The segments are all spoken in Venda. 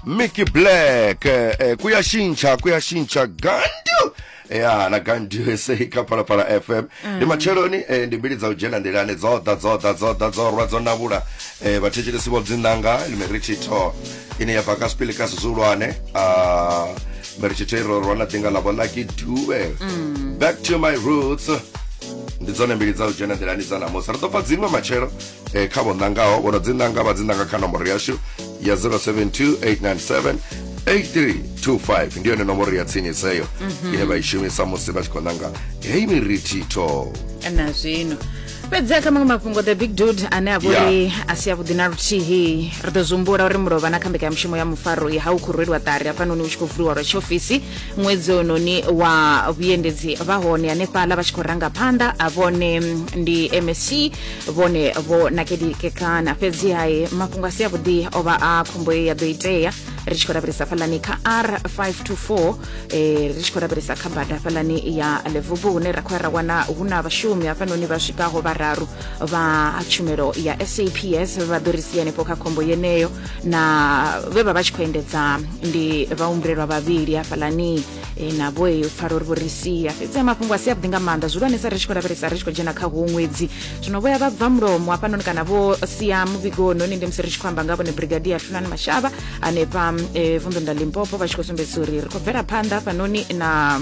mickey black eh, eh, kuyashintsha kuyashintsha gandu ya na gandu ese kha phalaphala fm ndi matsheloni eh, ndi mbili dza u dzhena nḓilani dzo ḓa dzo ḓa dzo ḓa dzo rwa dzo navhula eh, vhathetshelesi vho dzinanga limeritshitho ine ya bva ka sipili ka sizulwane ah, meritshitho i rorwa na ḓinga ḽavho ḽa kiduwe back to my roots ndi dzone mbili dza u dzhena nḓilani dza namusi ri ḓo pfa dziṅwe matshelo eh, kha vho ṋangaho vho no dzi ṋanga vha dzi ṋanga kha nomboro yashu ya 072 897 8325 ndi yone nomboro ya tsinisa eyo mhm. ine vha i shumisa musi vha tshi khou ṋanga heyi mirithitho na zwino fhedzi kha maṅwe mafhungo the big dude ane a vhori a si avhuḓi na luthihi ri ḓo zwihumbula uri mulovha na kha mbekanyamushumo ya mufaro ya ha u khou rweliwa ṱari hafhanoni hu tshi khou vuliwa lwa tshiofisi ṅwedzi ononi wa vhuendedzi vha hone hanefhaḽa vha tshi khou ranga phanḓa a vhone ndi msc vhone vho nakedikekana fhedzi hai mafhungo a si avhuḓi o vha a khombo ye ya ḓo itea ri tshi khou lavhelesa fhalani kha r 524 eh, ri tshi khou lavhelesa kha bada fhalani ya levubu hune ra khou ya ra wana hu na vhashumi hafhanoni vha swikaho vhararu vha tshumelo ya saps vha ḓo ri sia hanefho kha khombo yeneyo na vhe vha vha tshi khou endedza ndi vhaumbulelwa vhavhili hafhalani e, navho e, u pfala uri vho ri sia fhedzi a mafhungo a si avhuḓi nga maanḓa zwihulwanesa ri tshi khou lavhelesa ri tshi khou dzhena kha huwo ṅwedzi zwino vho ya vha bva mulomo hafhanoni kana vho sia muvhigoni hone ndi musi ri tshi khou amba nga vhone brigadier hlulani mashava hanefha um, e, vunḓuni ḽa limpopo vha tshi khou sumbedzisa uri ri khou bvela phanḓa hafhanoni na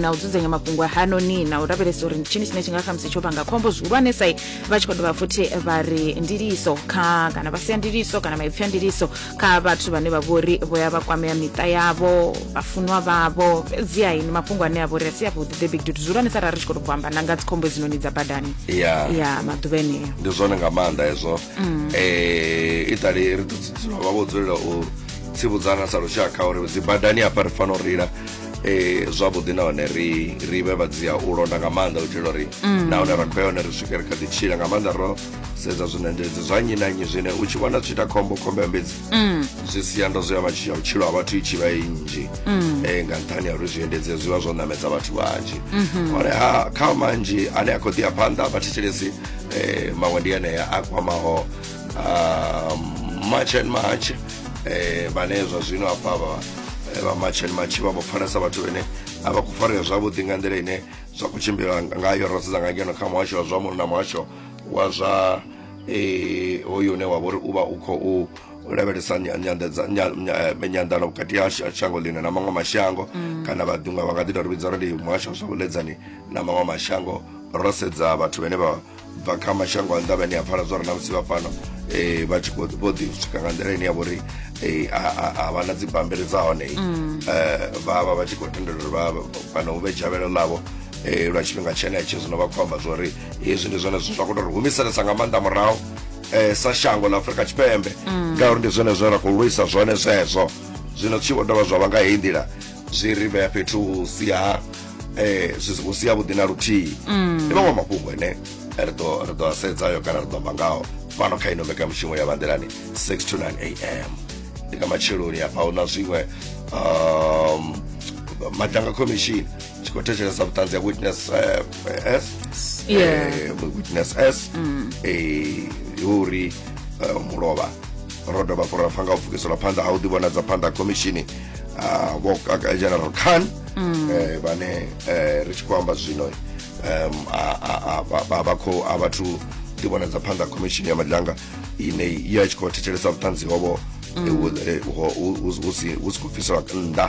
na u dzudzanya mafhungo hanoni na u lavhelesa uri ndi tshini tshine tshi nga khamusi tsho vhanga khombo zwihulwanesa vha tshi khou dovha futhi vha ri ndiliso kha kana vha sia ndiliso kana maipfi a ndiliso kha vhathu vhane vha vhori vho ya vha kwamea miṱa yavho vhafunwa vhavho fhedziha ini mafhungo ane a vhori a si avhuḓi the big dude zwihulwane sa ra ri tshi khou to bvo amba na nga dzikhombo hedzinoni dza badani ya ya maḓuvha eneo ndi zwone nga maanḓa hezwo um itali ri ḓo dzula vha vho dzulela u tsivudzana sa lushaka uri dzibadani hafha ri fanela u reila eh zwavhuḓi nahone ri ri vhe vha dzia u londa nga maanḓa u itela uri nahone ra khou ya hone ri swike ri kha ḓi tshila nga maanḓa ro sedza zwine ndi zwa nnyi na nnyi zwine u tshi vhona zwi tshi ita khombo khombo ya mbedzi Mm. zwi sia ndo zwi ya matshi- ya vhutshilo ha vhathu i tshi vha i nnzhi Mm. Eh, nga nṱhani ha uri zwiendedzi zwi vha zwo ṋamedza vhathu vhanzhi Mhm. hone ha kha manzhi ane a khou ḓi ya phanḓa vhathetshelesi eh, maṅwe ndi enea a kwamaho ah, march and march eh, vhane zwa zwino hafha vha eh, vha march and march vha vho pfanesa vhathu vhene a vha khou farea zwavhuḓi nga nḓila ine zwa khou tshimbila ngayo ro sedza nga ngeno kha muhasho wa zwa muno na muhasho wa zwa eh, hoyu une wa vha uri u vha u khou lavhelesa nyanḓano vhukati ha shango ḽine na maṅwe mashango mm. kana vhaḓiṅwe vha nga ḓi tori vhidza uri ndi muhasho wa zwa vhuledzani na maṅwe mashango ro sedza vhathu vhane vha bva kha mashango a nnḓa vhane a pfala zwa ri na musi vha fhano um vha tshi khou vho ḓi swika nga nḓila ine ya vho uri um a vha na dzibambiri dza hone um vha vha vha tshi khou tendela uri kana hu vhe dzhavhelo ḽavho um lwa tshifhinga tshenetsho zwino vha khou amba zwa uri hezwi ndi zwone zwithu zwa khou tou ri humiselesa nga maanḓa murahu eh, sa shango ḽa afurika tshipembe ngauri ndi zwone zwine ra khou lwisa zwone zwezwo zwino tshi vho dovha zwa vha nga heyi nḓila zwi ri vhea fhethu hu si ha eh, zwi si- hu si havhuḓi na luthihi ndi maṅwe mafhungo ane ri ḓo ri ḓo a sedzayo kana ri ḓo amba ngaho fhano kha ino mbekanyamushumo ya vhanḓilani 6 to 9 am ndi nga matsheloni hafha hu na zwiṅwe um, madanga commission tshi khou thetshelesa vhuṱanzi ha witness eh, eh, s Yeah. eh, witness s eh, ndi uri eh, mulovha ro dovha fo ra pfa nga u pfukiselwa phanḓa ha u ḓivhonadza phanḓa ha khomishini ah, vho Kaka- general khan eh, vhane eh, ri tshi khou amba zwino em, a- a- a- vha- vha- vha khou- a vhathu ḓivhonadza phanḓa ha khomishini ya madlanga ine i ya tshi khou thetshelesa vhuṱanzi hovho eh, hu- eh, ho- hu- hu- hu si hu si khou bviselwa nnḓa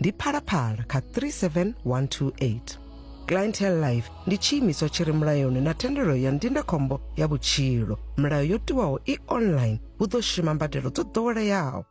ndi phalaphala kha 37128 clientele life ndi tshiimiswa tshi re mulayoni na thendelo ya ndindakhombo ya vhutshilo milayo yo tiwaho i online hu ḓo shuma mbadelo dzo ḓoweleaho